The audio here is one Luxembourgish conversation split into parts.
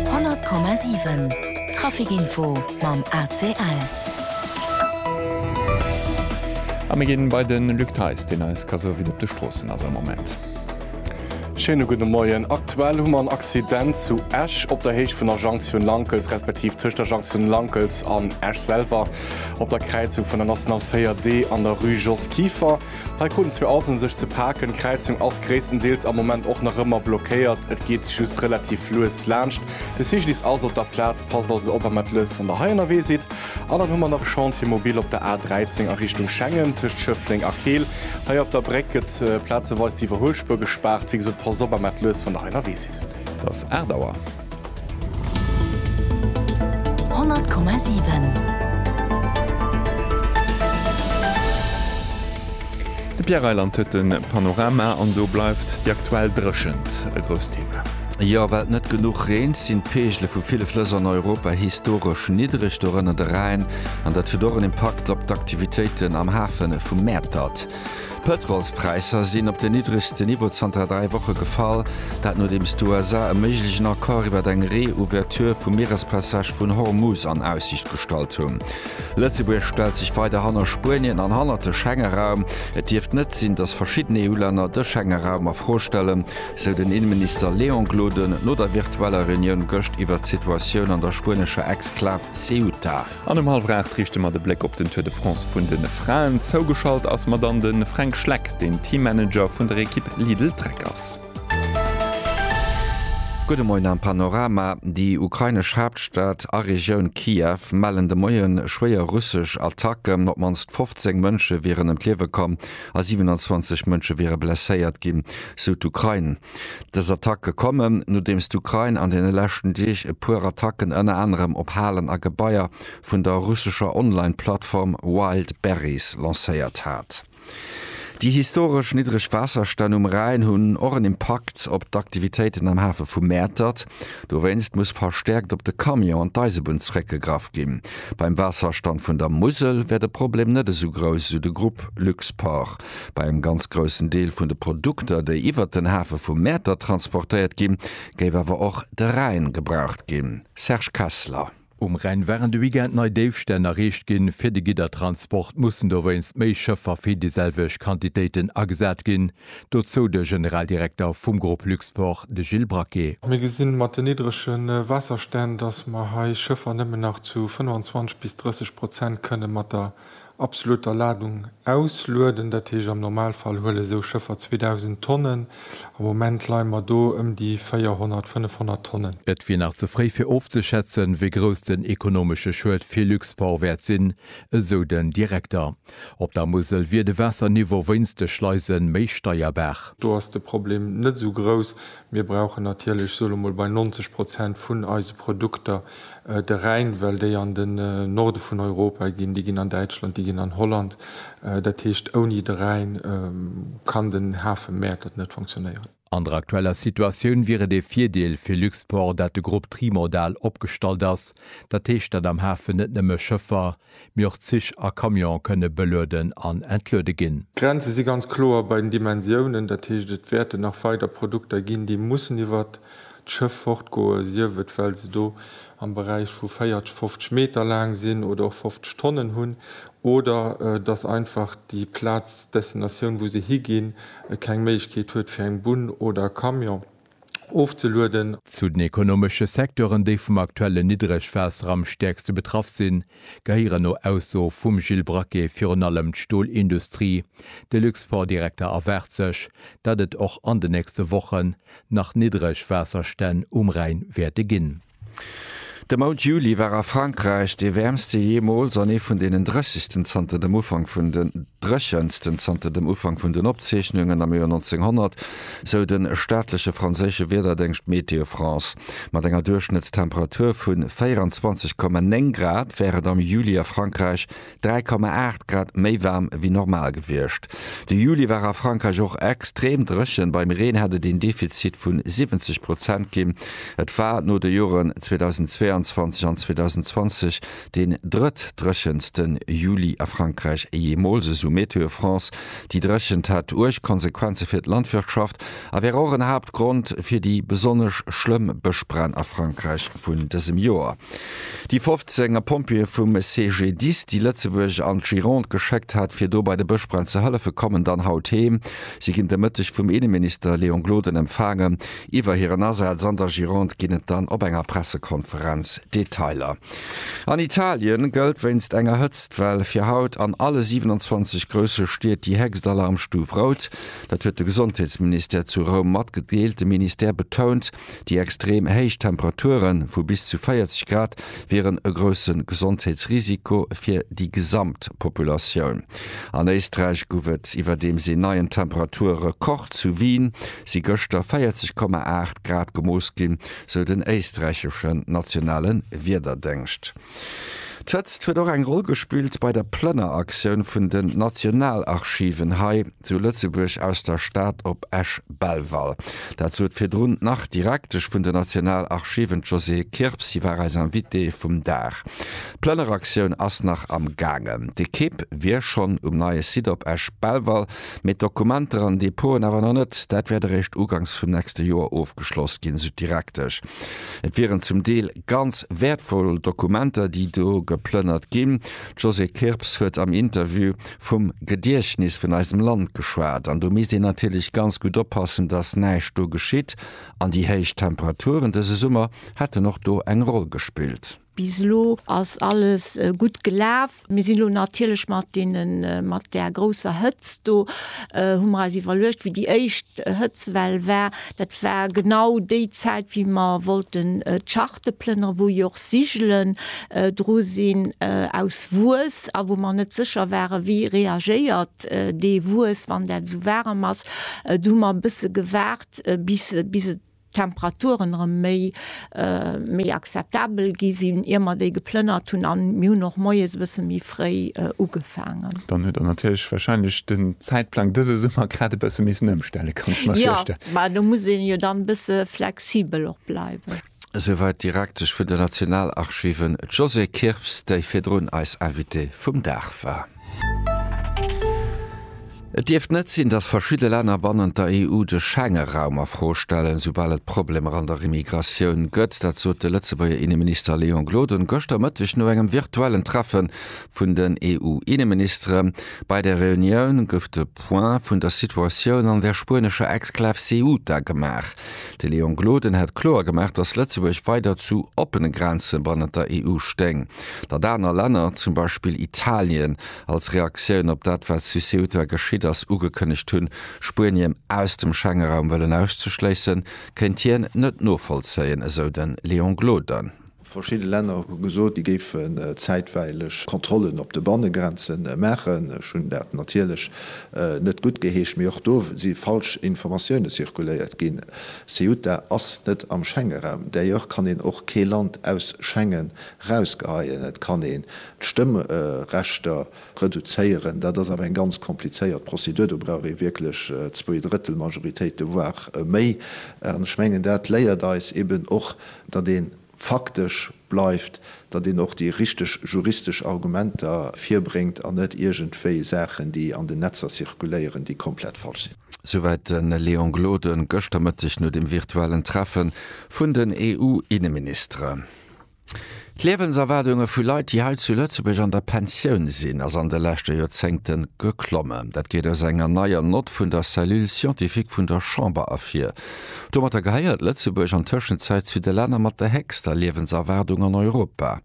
100,7 Trafikinfo mam ACL. A mir ginn bei den Luc Theis, deen eis ka soe wéi et op de Stroossen ass am Moment. Schéine gudde Moien. Aktuell hu mer en Accident zu Esch op der Héicht vun der Jonction Lankels, respektiv tëscht der Jonction Lankels an Esch selwer op der Kräizung vun der National 4D an der Rue Jos Kieffer. Hei kruten zwee Autoen sech ze paken. D'Kräizung ass gréisstendeels am Moment och nach ëmmer blockéiert, et geet just relativ lues laanscht. De Cyclist ass op der Plaz, passt also op a mat lues, wann der hei ënnerwee sidd. An dann hu mer nach Chantier mobil op der A 13 a Richtung Schengen, tëscht Schëffleng a Keel. Hei op der Bréck gëtt plazeweis d'iwwerhuelspuer gespaart. Wéi gesot, passt op a mat lues, wann der hei ënnerwee sidd. Et ass 8 Auer. 100,7. De Pierre Reyland huet de Panorama an do bleift déi aktuell Dréchent e grousst Thema. Jo, well net genuch reent, sinn d'Peegele vu ville Flëss an Europa historesch niddereg, dorënner de Rhäin, an dat huet och en Impakt op d'Aktivitéiten am Hafe vu Mäertert. D'Pëtrolspräisser sinn op den niddregste Niveau zanter dräi Woche gefall, dat nodeems d'USA e méiglegen Accord iwwer eng Reouverture vum Mierespassage vun Hormuz an Aussiicht gestallt hunn. Lëtzebuerg stellt sech weider hanner Spuenien an hanner de Schengeraum. Et dierft net sinn, datt verschidden EU-Länner de Schengeraum a Fro stellen, sou den Inneminister Léon Gloden no der virtueller Reunioun gëscht iwwer d'Situatioun an der spuenescher Exklav Ceuta. An um hallwer 8 riichte mer de Bléck op den Tour de France vun de Fraen. Zougeschalt ass mer dann de Fränk Schleck, deen Teammanager vun der Ekipp Lidl Trek ass. Gudde Moien am Panorama, Déi ukrainesch Haaptstad a Regioun Kiew mellen de Moie schwéier russesch Attacken. Op d'mannst 15 Mënsche wieren ëm d'Liewe komm a 27 Mënsche wiere blesséiert ginn, sou d'Ukrain. Dës Attacke kommen, nodeems d'Ukrain an deene leschten Deeg e puer Attacken ënner anerem op Halen a Gebaier vun der russescher Online-Plattform Wildberries lancéiert hat. Déi historesch niddreg Waasserstänn um Rhäin hunn och en Impakt op d'Aktivitéiten am Hafe vu Mäertert. Dowéinst muss verstäerkt op de Camion an d'Eisebunn zeréckgegraff ginn. Beim Waasserstand vun der Musel wär de Problem net esou grouss, esou de Grupp Luxport. Bei engem ganz groussen Deel vun de Produkter, déi iwwert den Hafe vu Mäertert transportéiert ginn, géif awer och de Rhäin gebraucht ginn. Serge Kessler. Um Rhäin waren de Weekend nei Déifstänn erreecht ginn. Fir de Giddertransport mussen dowéinst méi Schëffer fir déi selwecht Quantitéiten agesat ginn. Dozou de Generaldirekter vum Grupp Luxport, de Gilles Braquet. Mir gesi mat den niddrege Waasserstänn, datt mer hei Schëffer nëmmen nach zu 25 bis 30 Prozent kënne mat der Absoluter Ladung auslueden, dat heescht am Normalfall huele sou Schëffer 2.000 Tonnen. Am Moment leie mer do ëm déi 400, 500 Tonnen. Et wier nach ze fréi fir ofzeschätzen, wéi grouss den ekonomesche Schued fir Luxport wäert sinn, esou den Direkter. Op der Musel wier de Waasserniveau wéinst de Schleise méi steierbar. Do ass de Problem net esou grouss. Mir brauchen natierlech, soe lo mol, bei 90 Prozent vun eise Produkter De Rhäin, well déi an den Norde vun Europa ginn, déi ginn an Däitschland, déi ginn an Holland. Dat heescht, ouni de Rhäin kann den Hafe Mäertert net funktionéieren. An der aktueller Situatioun wier et ee Virdeel fir Luxport, dat de Grupp trimodal opgestallt ass, dat heescht, datt am Hafen net nëmme Schëffer, mee och Zich a Camionë kënne belueden an entluede ginn. D'Grenze si ganz kloer bei den Dimensiounen, dat heescht et wäerten nach weider Produkter ginn, déi mussen iwwert d'Schëff fortgoe sief et well se do am Beräich vu 40, 50 Meter laang sinn oder och 50 Tonnen hunn oder datt einfach déi Plaz, d'Destinatioun wou se higinn, keng Méiglechkeet huet fir eng Bunn oder e Camion. ofzelueden. Zu den ekonomesche Secteuren, déi vum aktuellen Niddregwaasser am stäerkste betraff sinn, gehéieren no Ausso vum Gilles Braquet virun allem d'Stolindustrie. De Luxportdirekter erwaart sech, datt et och an de nächste Wochen nach Niddregwaasserstänn um Rhäin wäerte ginn. De Mount Juli war a Frankräich dee wäermste jeemools an ee vun deenen dréchegsten zanter dem Ufank vun den dréchensten zanter dem Ufank vun den Opzeechnungen am Joer 1900, sou de staatleche franséische Wiederdéngscht Météo France. Mat enger Duerchschnëttstemperatur vu 24,9 Grad wär et am Juli a Frankräich 3,8 Grad méi waarm wéi normal gewiescht. De Juli war a Frankräich och extrem dréchen, beim Reen hätt et een Defizit vu 70 Prozent ginn. Et war no de Joren 2022 an 2020 deen drëttdréchenste Juli a Frankräich jeemools, esou MeteoFrance. Déi Dréchent hätt uerg Konsequenze fir d'Landwirtschaft a wär och en Haaptgrond fir déi besonnesch schlëmm Bëschbränn a Frankräich vun dësem Joer. Déi 15 a Pompjeeë vum CGDIS, déi Lëtzebuerg an d'Gironde geschéckt hat, fir do bei de Bëschbränn ze hëllefen, kommen dann haut heem. Si ginn de Mëtteg vum Inneminister Léon Gloden empfaangen. Iwwer hiren Asaz an der Gironde ginn et dann op enger Pressekonferenz Detailer. An Italien gëllt wéinst enger Hëtztwell fir haut an alle 27 grousse Stied déi héchst Alarmstuf Rout. Dat huet de Gesondheetsministère zu Roum matgedeelt. De Ministère betount, Déi extrem héich Temperature vu bis zu 40 Grad wieren e grousse Gesondheetsrisiko fir déi gesamt Populatioun. An Éisträich gouf et iwwerdeems een neien Temperature-Rekord. Zu Wien si gëschter 40,8 Grad gemooss ginn, sou den éisträicheschen nationale Wiederdéngscht. D'Hëtzt huet och eng Roll gespillt bei der Plënneraktioun vun den Nationalarchiven hei zu Lëtzebuerg aus der Stad op Esch-Belval. Dat sot virdrun d'Nach-Direktesch vun den Nationalarchiven, d'Josée Kirps. Si war eis Invitée vum Dag. D'Plënneraktioun ass nach am gaangen. D'Ekipp wier schonn um neie Site op Esch-Belval, mee d'Dokumenter an Depoten awer nach net. Dat wäert eréischt ugangs vum nächste Joer ofgeschloss ginn, esou d'Direktesch. Et wieren zum Deel ganz wäertvoll Dokumenter, déi do geplënnert ginn. D'Josée Kirps huet am Interview vum Gediechtnis vun eisem Land geschwat. An do misst een natierlech ganz gutt oppassen, datt näischt do geschitt. An déi héich Temperaturen dëse Summer hätten och do eng Roll gespillt. Bis elo ass alles gutt gelaf. Mir sinn elo natierlech mat deenen, mat där grousser Hëtzt do, hu mer eis iwwerluecht, wéi déi éischt Hëtzwell war, dat war genau déi Zäit, wéi mer wollten d'Charte plënnere wou jo och Sigelen dru sinn aus Wues a wou mer net sécher ware wéi reagéiert dee Wues, wann dat esou waarem ass. Du hu mer e bësse gewaart, bis, bis et d'Temperaturen erëm méi méi akzeptabel gi sinn, ier mer déi geplënnert hunn, an mir hunn och moies e bësse méi fréi ugefaangen. Dann huet Der natierlech wahrscheinlech den Zäitplang dëse Summer grad e bësse missen ëmstellen, kann ech mer virstellen. Jo, mä do muss ee jo dann e bësse flexibel och bleiwen. Esouwäit d'Direktesch vun den Nationalarchiven, d'Josée Kirps, déi virdrun eis Invitée vum Dag war. Et dierft net sinn, datt verschidde Länner bannent der EU de Schengeraum a Fro stellen, soubal et Problemer an der Immigratioun gëtt. Dat sot de Lëtzebuerger Inneminister Léon Gloden gëschter Mëtteg no engem virtuellen Treffe vun den EU-Inneministere. Bei der Reunioun gouf de Point vun der Situatioun an der spuenescher Exklav Ceuta gemaach. De Léon Gloden hat kloer gemaach, datt Lëtzebuerg weider zu oppene Grenze bannent der EU stéing. Datt aner Länner, zum Beispill Italien, als Reaktioun op dat wat zu Ceuta geschitt ass, ugekënnegt hunn, Spuenien aus dem Schengeraum wëllen auszeschléissen, kéint hien net novollzéien, esou de Léon Gloden. Verschidde Länner hu gesot, déi géifen zäitweileg Kontrollen op de Bannegrenze maachen. Ech hunn dat natierlech net guttgeheescht, mee och do si falsch Informatioune zirkuléiert ginn. Ceuta ass net am Schengeraum, d'ailleurs kann een och kee Land aus Schengen Rausgeheien. Et kann een d'Stëmmrechter reduzéieren. Dat ass awer eng ganz komplizéiert Prozedur. Do brauch ee wierklech zwee Drëttel Majoritéite, voire méi. An ech mengen, dat léiert eis eben och, datt ee faktesch bleift, datt een och déi richteg juristesch Argumenter virbréngt an net iergendwéi Saachen, déi an den Netzer zirkuléieren, déi komplett falsch sinn. Souwäit de Léon Gloden gëschter Mëtteg no dem virtuellen Treffe vun den EU-Inneministeren. D'Liewenserwaardunge vu Leit, déi hei zu Lëtzebuerg an der Pensioun sinn, ass an de leschte Joerzéngte geklommen. Dat geet aus enger neier Nott vun der Cellule scientifique vun der Chamber ervir. Domatter gehéiert Lëtzebuerg an Tëschenzäit zu de Länner mat der héchster Liewenserwaardung an Europa.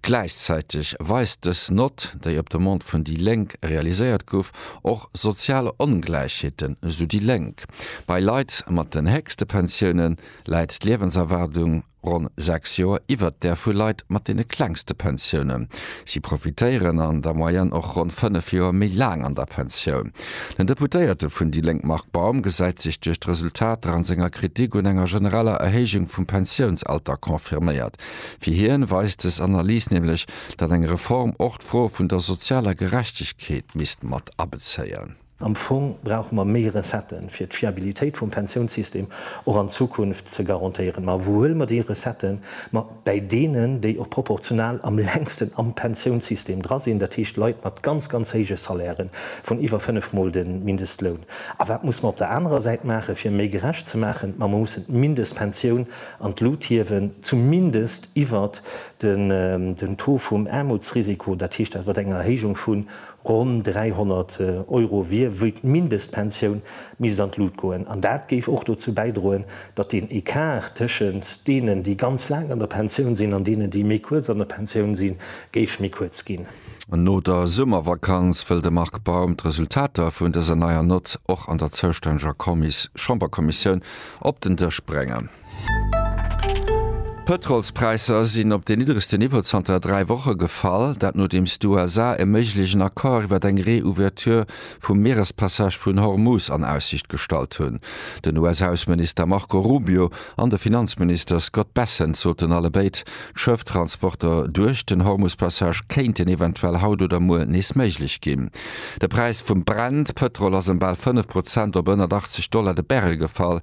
Gläichzäiteg weist dës Nott, déi op Demande vun déi Lénk realiséiert gouf, och sozial Ongläichheeten, sou déi Lénk. Bei Leit mat den héchste Pensiounen läit d'Liewenserwaardung. Ronn 6 Joer iwwert där vu Leit mat deene klengste Pensiounen. Si profitéieren an der Moyenne och ronn 5 Joer méi laang an der Pensioun. Den Deputéierte vun déi Lénk Marc Baum gesäit sech duerch d'Resultater an senger Kritik un enger genereller Erhéijung vum Pensiounsalter confirméiert. Fir hien weist des Analys nämlech, datt eng Reform och d'Fro vun der sozialer Gerechtegkeet misst mat abezéien. Am Fong brauche mer méi Recetten, fir d'Fiabilitéit vum Pensiounssystem och an Zukunft ze garantéieren. Ma wou huele mer déi Recetten? Ma bäi deenen, déi och proportional am längsten am Pensiounssystem dra sinn, dat heescht Leit mat ganz, ganz héije Salairen, vun iwwer fënnef Mol de Mindestloun. A wat muss mer op der anerer Säit maachen, fir méi gerecht ze maachen? Ma mer mussen d'Mindestpensioun an d'Lut hiewen, zumindest iwwert den Taux vum Aarmutsrisiko, dat heescht iwwert eng Erhéijung vun Ronn 300 Euro wier wéi d'Mindestpensioun, misst an d'Lut goen. An dat géif och dozou bäidroen, datt den Ecart tëschent deenen, déi ganz laang an der Pensioun sinn, an deenen, déi méi kuerz an der Pensioun sinn, géif méi kuerz ginn. No der Summervakanz wëll de Marc Baum d'Resultater vun dëser neier Nott och an der zoustänneger Chamberkommissioun op den Dësch bréngen. D'Pëtrolspräisser sinn op den niddregsten Niveau zanter dräi Woche gefall. Dat nodeems d'USA e méiglegen Accord iwwer eng Reouverture vum Mierespassage vun Hormuz an Aussicht gestallt hunn. Den US-Ausseminister Marco Rubio an de Finanzminister Scott Bessent soten allebéid, d'Schëfftransporter duerch den Hormuz-Passage kéinten eventuell haut oder muer nees méiglech ginn. De Präis vum Brent-Pëtrol ass ëm bal fënnef Prozent op ënnert 80 Dollar de Barrel gefall.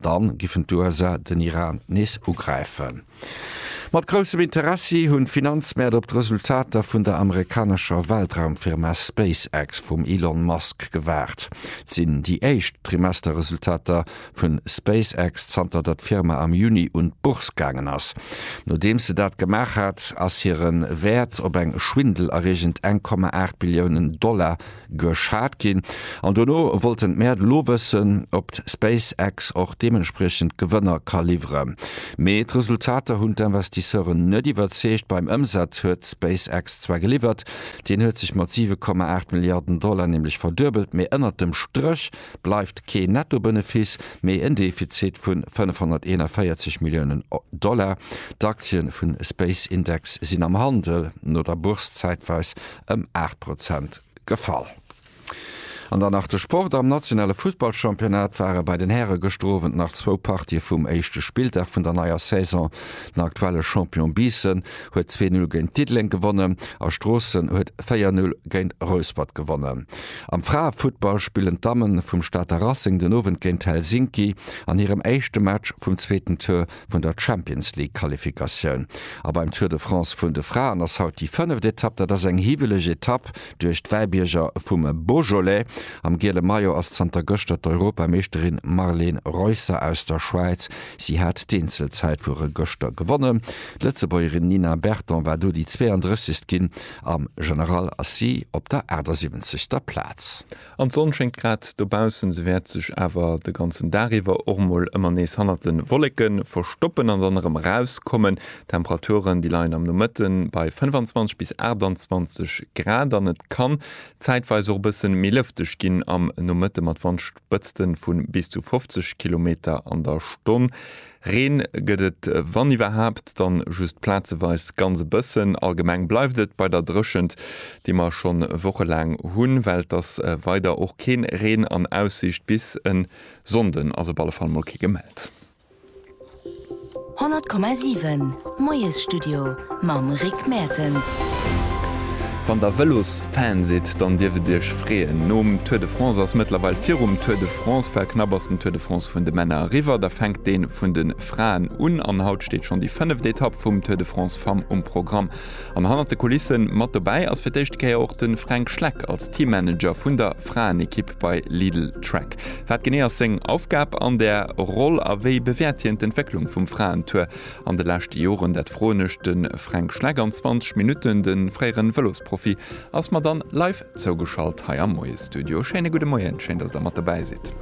Dann giffen d'USA den Iran nees ugräifen. Mat groussem Interessi hunn d'Finanzmäert op d'Resultater vun der amerikanescher Weltraumfirma SpaceX vum Elon Musk gewaart. Et sinn déi éischt Trimesterresultater vun SpaceX zanter der d'Firma am Juni un d'Bourse gaangen ass. Nodeems se dat gemaach hat, ass hiren Wäert op eng schwindelerreegend eng Komma aacht Billiounen Dollar geschat ginn an dono wollten d'Maire de lo wëssen op d'SpaceX och deementspriechend Gewënner ka liwwere mee d'Resultater hunn d'Investisseuren net iwwerzeegt. Beim Ëmsaz huet d'SpaceX zwar geliwwert, deen huet sech mat 7,8 Milliarden Dollar nämlech verduebelt, mee ënnert dem Stréch bleift kee Netto-Benefice mee en Defizit vun 541 Milliounen Dollar. D'Aktien vun SpaceIndex sinn am Handel no der Bourse zäitweis ëm 8 Prozent gefall. An dann nach de Sport, Am nationale Fussballchampionnat ware bei den Häre gëschter Owend nach zwou Partië vum éischte Spilldag vun der neier Saison. Den aktuelle Champion Biissen huet zwee Null géint Diddeleng gewonnen a Stroossen huet véier Null géint Rouspert gewonnen. Am Fraefuttball spillen d'Dammen vum Stater Racing den Owend géint Helsinki an hirem éischte Match vum zweeten Tour vun der Champions League Qualifikatioun. A beim Tour de France vun de Fraen ass haut déi fënneft Etapp. Dat ass eng hiwweleg Etapp duerch d'Wäibierger vum Beaujolais. Am giele Maillot ass zanter gëschter d'Europameeschterin Marlen Reusser aus der Schwäiz. Si hat d'Eenzelzäitfuere gëschter gewonnen. D'Lëtzebuergerin Nina Berton war do déi 32. ginn. Am General ass si op der 78. Plaz. An d'Sonn schéngt grad dobaussen, se wäert sech awer de ganzen Dag iwwer och mol ëmmer nees hannert de Wolleke verstoppen an dann erëm erauskommen. D'Temperaturen, déi leien am Nomëtte bei 25 bis 28 Grad an et kann zäitweis och e bësse méi lëfteg ginn am Nomëtte mat Wandspëtzte vu bis zu 50 Kilometer an der Stonn. Reen gëtt et wann iwwerhaapt dann just plazeweis ganz e bëssen. Allgemeng bleift et bei der Dréchent, déi mer schonn wochelaang hunn, well et ass weider och keen Reen an Aussicht bis en Sonnden, ass op alle Fall mol kee gemellt. 100,7. D'Moiesstudio mam Rick Mertens. Wann der Vëlosfan sidd, dann dierft et iech freeën. Nom Tour de France ass mëttlerweil virum Tour de France. Well knapp ass den Tour de France vun de Männer eriwwer, da fänkt dee vun de Fraen un. An haut steet schonn déi fënneft Etapp vum Tour de France Femmes um Programm. An hannert de Kulisse mat dobäi ass fir d'éischte Kéier och de Fränk Schleck als Teammanager vun der Fraenekipp bei Lidl Trek. Wat genee ass seng Aufgab an där Roll a wéi bewäert hien d'Entwécklung vum Fraentour? An de leschte Joren, dat froen ech de Fränk Schleck an 20 Minutten. De fréiere Vëlosprofi ass mer dann live zougeschalt hei am Moiesstudio. Schéine gudde Moien, schéin, datt Der mat dobäi sidd.